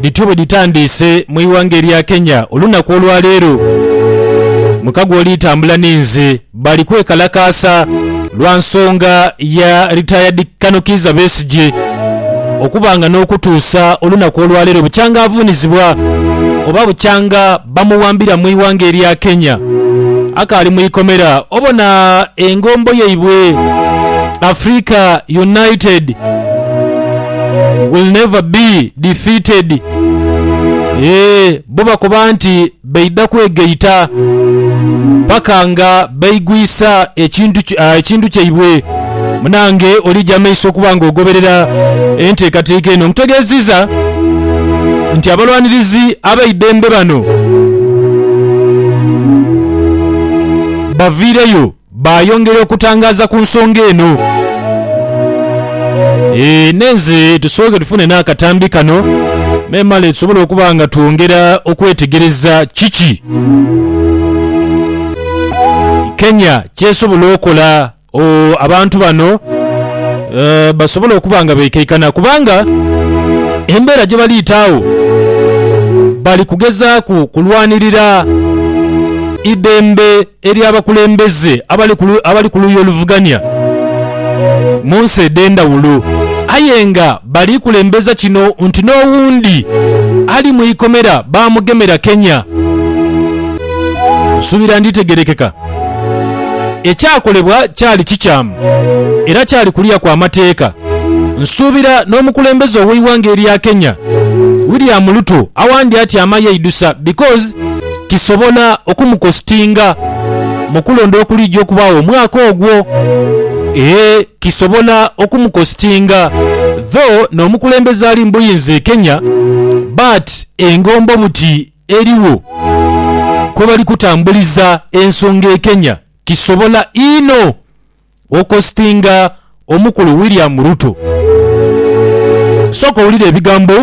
Dhityo bwe dhitandiise mu ighanga erya Kenya olunaku olwa leero. Mukago oli tambula ni nze bali kwekalakaasa lwa nsonga ya Retired Colonel Kiiza Besigye okuba nga n'okutuusa olunaku olwa leero bukyanga avuunizibwa oba bukyanga bamuwambira mu ighanga erya Kenya akaali mu ikomera obona engombo yaibwe Africa United will never be defeated. Eeh, bo bakoba nti baidha kwegaita paka nga baigwisa ekintu ah, ekintu kyaibwe. Munange olija amaiso okuba nga ogoberera enteekateeka eno. Nkutegeeziza nti abalwanirizi abeidembe bano baviireyo. Baayongera okutangaaza ku nsonga eno. Eeh, nenze tusooke tufune n'akatambi kano memale tusobole okuba nga twongera okwetegereza kiki Kenya ky'esobola okola ooh abantu bano eeh basobole okuba nga beekaikana kubanga embeera gye baliita agho bali kugezaaku kulwanirira idembe Eri abakulembeze abali ku luuyi oluvugania mu nsi edh'endhawulo aye nga bali kulembeza kino nti n'owundi ali mu ikomera baamugemera Kenya. Nsuubira nditegeerekeka. Ekyakolebwa kyali kikyamu era kyali kulya kwa mateeka. Nsuubira n'omukulembeze ow'eighanga erya Kenya William Ruto awandyatyama yaidhusa because. kisobola okumukositinga mu kulonda okulija okubaagho omwaka ogwo. Ee, kisobola okumukositinga. Dho n'omukulembeze ali mu buyinza e Kenya, Bart, engombo buti erigho kwebali kutambuliza ensonga e Kenya. Kisobola inho. Okositinga omukulu William Ruto. Sooka owulire ebigambo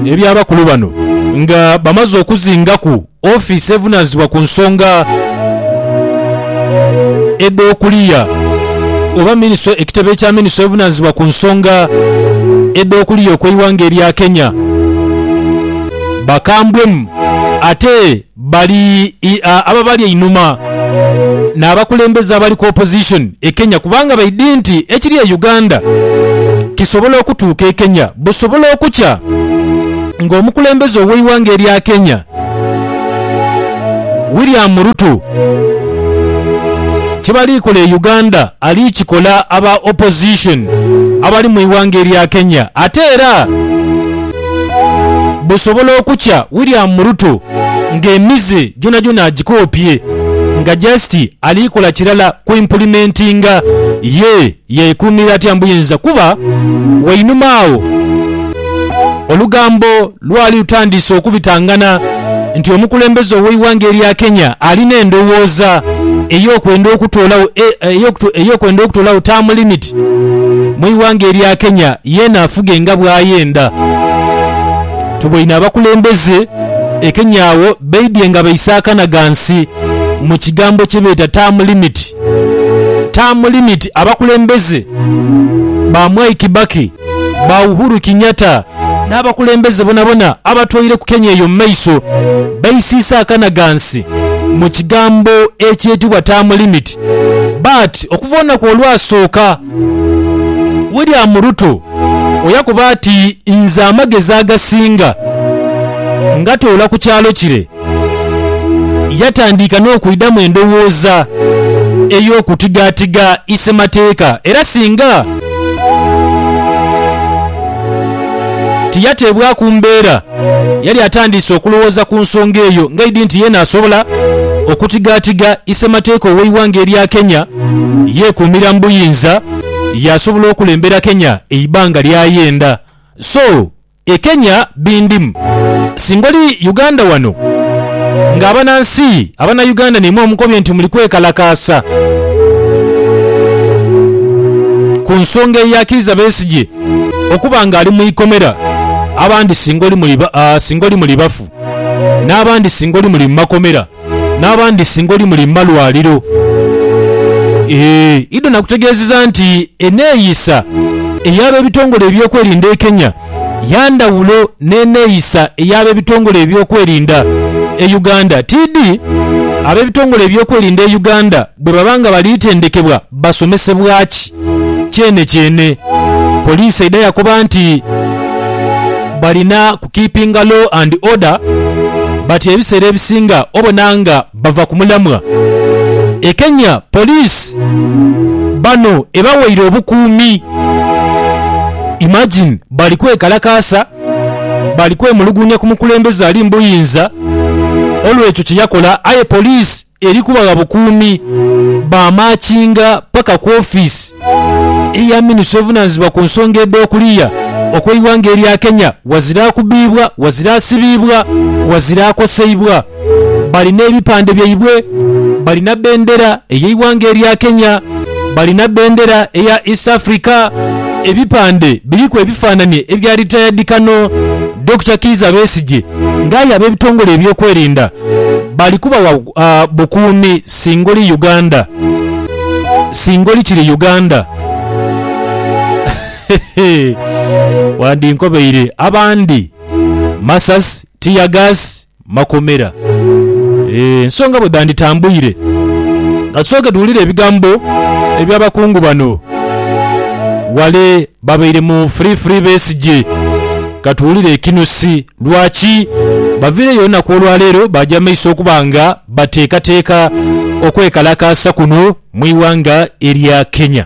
eby'abakulu bano nga bamaze okuzingaku ofiisi evunaanyizibwa ku nsonga edh'okuliya oba minisitule ekitebe kya minisitule evunaanyizibwa ku nsonga edh'okuliya okw'eighanga erya Kenya. Bakambwemu ate. Bali ababali einhuma n'abakulembeze abali ku opposition e Kenya kubanga baidhi nti ekiri e Uganda kisobola okutuuka e Kenya busobola okukya ng'omukulembeze ow'eighanga erya Kenya William Ruto kyebali kola e Uganda ali kikola aba opposition abali mu ighanga erya Kenya ate era busobola okukya William Ruto nga emize gyonhagyonha agikoopye nga just ali kola kirala ku impulimentinga ye yekuumira atya mbuyinza kuba wainuma agho olugambo lwali lutandiise okubitanganha nti omukulembeze oweighanga erya Kenya alina endhowooza eyokwenda okutoolagho term limit. President mwighanga erya Kenya yena afuge nga bwayenda. Tuboine abakulembeze e Kenya agho beidhye nga baise akana ghansi mu kigambo kyebeeta term limit. Term limit abakulembeze ba Mwai Kibaki. ba Uhuru Kinyatta n'abakulembeze bonabona abatwaire ku Kenya eyo mu maiso baisiisa akanagansi mu kigambo ekyetibwa term limit but okuva olunaku olwasooka William Ruto oyakuba ati nze amagezi agasinga ngatoola ku kyalo kire. Yatandiika n'okwidhamu endowooza ey'okutigaatiga isemateeka era singa tiyateebwaku mbeera, yali atandiise okulowooza ku nsonga eyo ng'eidhi nti yeena asobola okutigaatiga isemateeka ow'eighanga erya Kenya yeekuumira mu buyinza yaasobola okulembera Kenya eibanga ly'ayenda. So. e Kenya bindimu. Singa oli Uganda wano nga abanansi abanauganda naimwe omukobye nti muli kwekalakaasa ku nsonga eya Kiiza Besigye okuba nga ali mu ikomera abandi singa oli muli bafu n'abandi singa oli muli mu makomera. n'abandi singa oli muli malwaliro. Idon akutegeezezza nti eneeyisa ey'abebitongole eby'okwerinda e Kenya yandhawulo n'eneeyisa ey'abebitongole eby'okwerinda e Uganda. TD, Abebitongole eby'okwerinda e Uganda bwebaba nga bali tendekebwa basomesebwa ki? Kyenekyene, poliisi eidha yakoba nti balina ku keepinga law and order but ebiseera ebisinga obona nga bava ku mulamwa. E Kenya poliisi bano ebawaire obukuumi. Imagine bali kwekalakaasa, bali kwemuluguunya ku mukulembeze ali mu buyinza olw'ekyo kye yakola aye poliisi Eri kubagha bukuumi baamaakinga paka ku ofiisi eya minisita ovunaanyizibwa ku nsonga edh'okuliya okw'eighanga erya Kenya wazira akubiibwa, wazira asibiibwa, wazira akoseibwa. Bali n'ebipande byaibwe, bali na bendera ey'eighanga erya Kenya, bali na bendera eya East Africa, ebipande biriku ebifaananie ebya Retired Colonel Dokita Kiiza Besigye nga aye ab'ebitongole eby'okwerinda bali kubawa bukuumi singa oli Uganda, singa oli kiri Uganda. Wandinkobeire. Abandi masasi, tiyagaasi, makomera. Eeh, nsonga bwe dhanditambuire. Ka tusooke tuwulire ebigambo eby'abakungu bano ghale Babaire mu free free Besigye. Katuwulire ekinusi lwaki baviireyo olunaku olwaleero baaja mumaiso okuba nga bateekateeka okwekalakaasa kuno mu ighanga erya Kenya.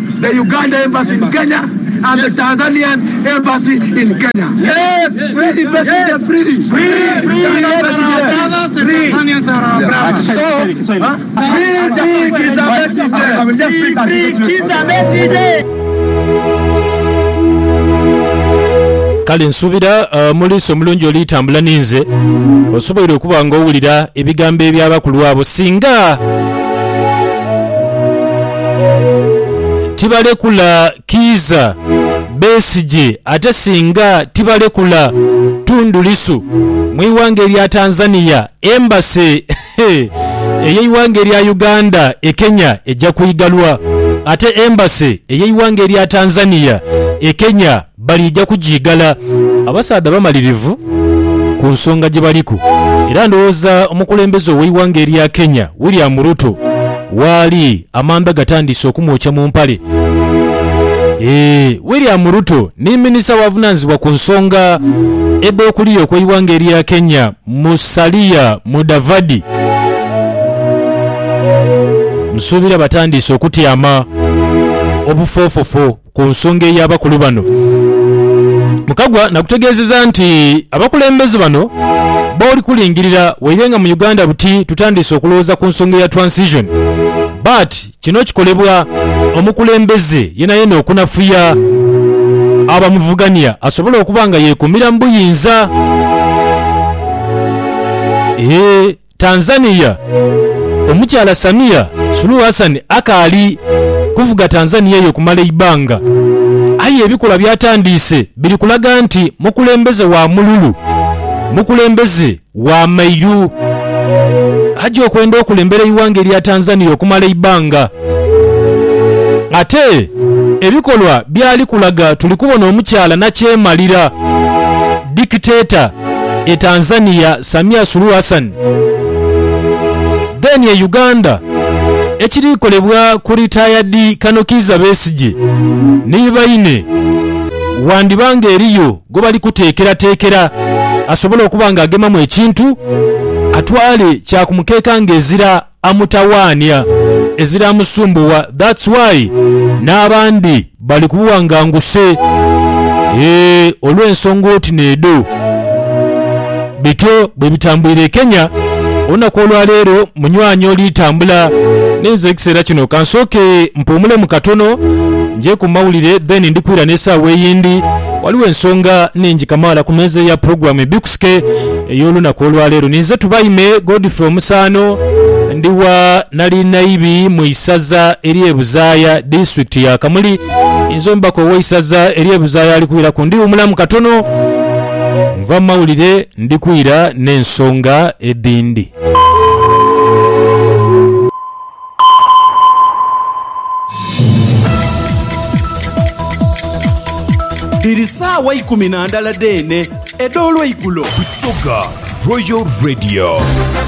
The Uganda Embassy in Kenya and the Tanzanian Embassy in Kenya. Free Besigye free. Kale nsuubira mu liiso omulungi olitambula ninze, osoboire okuba ng'owulira ebigambo eby'abakulu abo. Singa. tibalekula Kiiza Besigye ate singa tibalekula Tundu Lissu mu ighanga erya Tanzania, Embassy ey'eighanga erya Uganda e Kenya eja kwigalwa ate Embassy ey'eighanga erya Tanzania e Kenya, Baliija kugiigala. Abasaadha bamalirivu ku nsonga gye baliku era ndowooza omukulembeze ow'eighanga erya Kenya, William Ruto waali amanda gatandiise okumwokya mu mpale. Eeh, William Ruto ni minisita w'avunaanyizibwa ku nsonga edh'okuliya okw'eighanga erya Kenya, Musalia Mudavadi. Nsuubira batandiise okutyama obufoofofo. Ku nsonga ey'abakulu bano, Mukagwa nagutegeezeza nti abakulembeze bano booli kulingirira waire nga mu Uganda buti tutandiise okulowooza ku nsonga eya Transition but kino kikolebwa omukulembeze yenayena okunafuya abamuvugania asobole okuba nga yeekuumira mu buyinza. Tanzania, Omukyala Samia Suluhu Hassan akaali kuvuga Tanzania eyo okumala eibbanga aye ebikolwa by'atandiise biri kulaga nti mukulembeze wa mululu, mukulembeze wa mairu aja okwenda okulembera eighanga erya Tanzania okumala eibbanga. Ate ebikolwa byali kulaga tuli kubona omukyala nakyemalira, dictator, e Tanzania Samia Suluhu Hassan, then e Uganda ekiri kolebwa ku retired Kano Kiiza Besigye ni baine wandiba nga eriyo gwebali kuteekerateekera asobole okuba nga agemamu ekintu atwale kya ku mukeeka nga ezira amutawaania ezira musumbuwa that's why n'abandi bali ku buwanganguse eeh olw'ensonga oti n'edho. Bityo bwe bitambuire e Kenya olunaku olwa leero munywanyi oli tambula n'inze ekiseera kino kansooke mpuumulemu katono nje ku mawulire then ndi kwira n'esaawa eyindi waliwo ensonga nhingi kamaala ku meeza ya pulogulaamu Ebikusike Ey'olunaku olwa leero ninze Tubaime Godfrey Omusaano, ndi wa Nalinaibi mu isaza ery'e Buzaaya, disitulikiti ya Kamuli. Ninze omubaka ow'eisaza ery'e Buzaaya ali kwiraku. Ndi wumulamu katono, nva mu mawulire ndi kwira n'ensonga edhindi. Dhiri saawa ikumi na ndala dheene edh'olweigulo. Busoga Royal Radio.